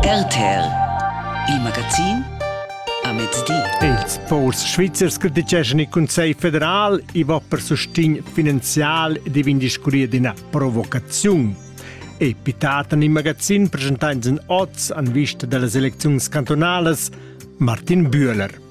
RTL Il magazin a mezdi. Ils ports svizzers criticeschan il Consiglio federal über per sustegn finanzial di vindiscuria d'ina provocaziun. E pitata in magazin presentants in oz en vista delle elezioni cantonalas Martin Bühler.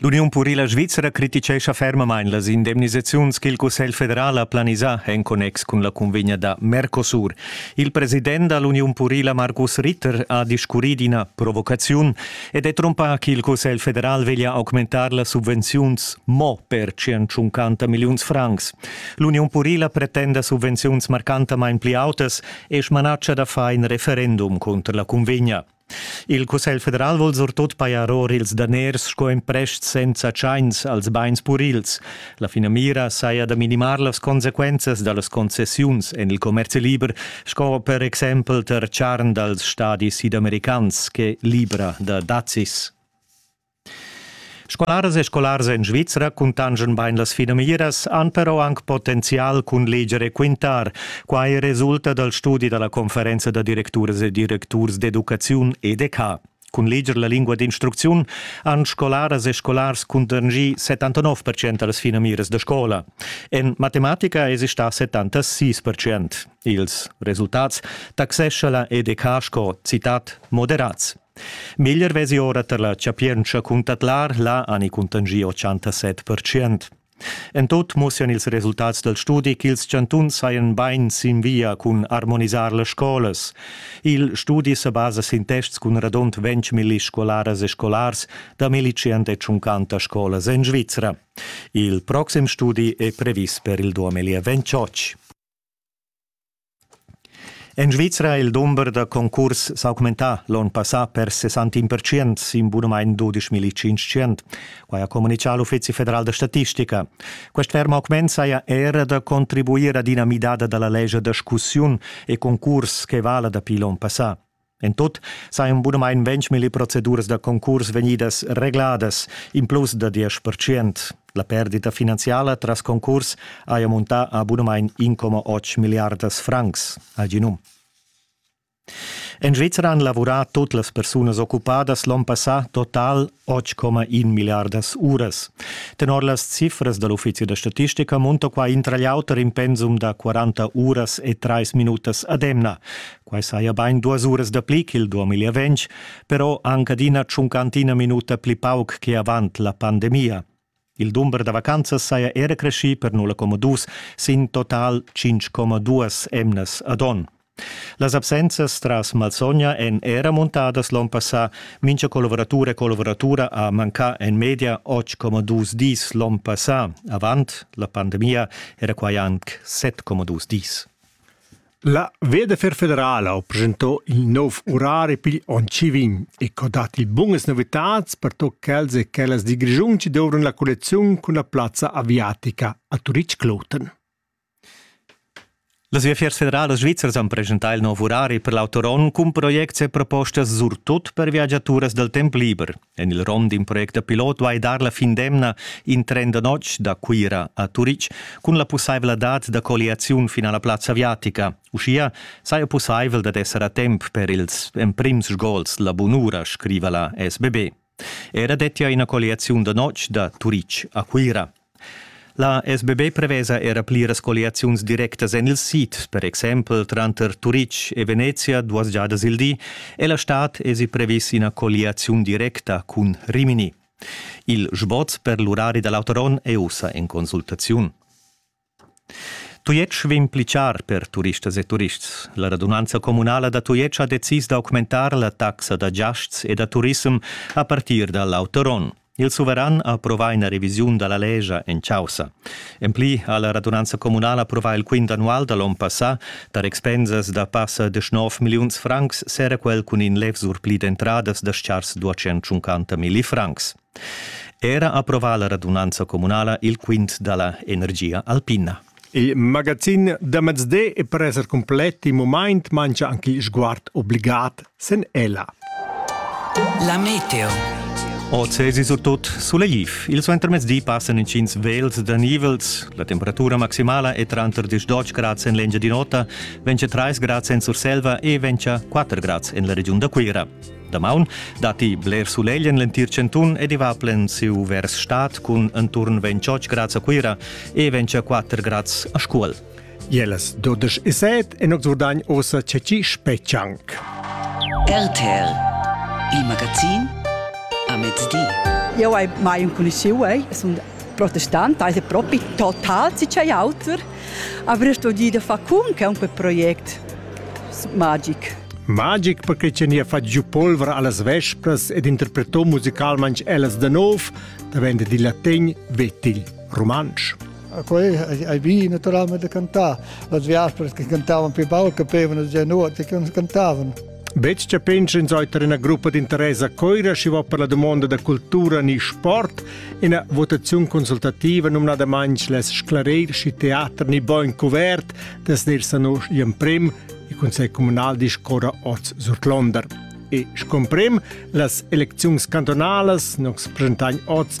L'Uniun purila svizra criticescha fermamain las indemnisaziuns ch'il Cussegl federal ha planisà en connex cun la cunvegna da Mercosur. Il president da l'Uniun purila Markus Ritter ha discurrì d'ina provocaziun ed è trompà ch'il Cussegl federal veglia augmentar las subvenziuns mo per 150 milliuns francs. L'Uniun purila pretenda subvenziuns marcantamain pli autas e smanatscha da far in referendum cunter la cunvegna. Il Cussegl federal vul surtut pajar or ils daners sco emprest senza tschains als bains purils. La finamira saja da minimar las consequenzas da las concessiuns en il commerzi liber, sco per exempel tar charn dals stadis sidamericans che libra da dazis. Scolaras e scolars en Svizra cuntanschan bain las finamiras, han però anc potenzial cun leger e quintar. Quai resulta dal studi da la conferenza da directuras e directurs d'educaziun EDK. Cun leger la lingua d'instrucziun han scolaras e scolars cuntanschì 79% da las finamiras da scola. En matematica èsi stà 76%. Ils resultats taxescha la EDK sco citat moderats. Meglier vesi ora tar la chapientscha cun tadlar là ani cuntangi 87%. En tot mussian ils resultats dal studi ch'ils chantuns sajan bain sin via cun armonisar las scolas. Il studi sa basa sin tests cun radund 20.000 scolaras e scolars da 1.150 scolas en Svizra. Il proxim studi è previs per il 2028. En Svizra è il dumber da concurs s'augmentà l'onn passà per 61 percent sin bunamain 12.500. Quai ha communitgà l'Uffizi federal da statistica. Quest ferm augment saja era da contribuir ad ina midada da la lescha da scussiun e concurs che vala dapi l'onn passà. En tut sajan bunamain ventg proceduras da concurs vegnidas regladas, in plus da diesch percent. La perdita finanziala tras concurs haja muntà a bunamain 1,8 milliardas francs, ha gì num. En Svizzera han lavurà tut las persunas occupadas l'onn passà total 8,1 miliardas uras. Tenor las cifras da l'uffizi da statistica munta qua intra l'auter in pensum da 40 uras e 3 minutas ad emna. Quai saja bain duas uras dapli ch'il 2020, però anc adina tschuncantina minuta pli pauc che avant la pandemia. Il dumber da vacanzas saja era creschì per 0,2 sin total 5,2 emnas ad onn. Las absenzas tras malsogna èn era montadas l'onn passà. Mincha collaboratur e collaboratura ha mancà en media 8,2 dis l'onn passà. Avant la pandemia era quai anc 7,2 dis. La Vederfer federala ha presentà in nov urari pigl onn chi vegn e ho dat il bunas novitats per tot quels e quellas di Grischun chi dovran la collecziun cun la plazza aviatica a Turitg-Kloten. Las viafiers federalas svizras han presentà il nov urari per l'autoron cun projects e propostas surtut per viagiaturas dal temp liber. En il rom d'in project da pilot vai dar la fin d'emna in tren da notg da Cuira a Turitg cun la pussaivladad da colliaziun fin a la plazza aviatica. Uschia saja pussaivel dad esser a temp per ils emprims sgols la bunura, scriva la SBB. Era dettia ina colliaziun da notg da Turitg a Cuira. La SBB prevesa era pliras colliaziuns directas en il sid, per exempel tranter Turitg e Venezia duas giadas il di, e la stad esi previs ina colliaziun directa cun Rimini. Il sboz per l'urari da l'autoron è ussa en consultaziun. Tujetsch vegn pli char per turistas e turists. La radunanza communala da Tujetsch ha decis d'augmentar la taxa da giasts e da turissem a partir da l'autoron. Il suveran ha approvà ina revisiun da la lescha en chaussa. En pli ha la radunanza communala approvà il quint annual da l'onn passà. Tar expensas da passa de 9 milliuns francs s'era quel cun in levzur pli d'entradas da schars mili francs. Era approvà la radunanza communala il quint da la energia alpina. Il magazin da mezde è per esser cumplet in mumaint mancha anche sguard obligat sen ella. La meteo. Ozesi surtut sulegif. Il suentermezdi passan inschins vels da nivels. La temperatura maximala è tranter 10 grads en l'Engiadin'Ota, vencha 3 grads en Surselva e vencha 4 grads en la regiun da Cuira. Damaun datti bler sulegl en l'entir chantun ed i va plensiu vers stad cun enturn 28 grads a Cuira e 24 grads a Scuol. Jeles 12 e 7 en Oxurdagn ossa ceci spetschanc. RTL Il Magazin a mezdi. Io hai mai un conosciuto, eh? sono protestante, also proprio total sei auter. Aber ich sto dir da fa cum che un quel project magic. Magic perche cha nia fat giù polvra allas vespras ed interpreto musicalmanch ellas da nov, da venda di latin vetil rumantsch. Quei ai vi naturalmente da cantar. Las viaspras che cantavan più baul capevano già nuot e che non cantavan. Bec cha pensa in soiter ina gruppa di Teresa Coira si va per la domanda da cultura ni sport, ina votazione consultativa numnada manch les sclarir si teater ni bon cuvert, Das nächste noch im Prem, il Consiglio Comunal discorra oz sur Londra. E scomprem, las elecziuns cantonalas nos presentan oz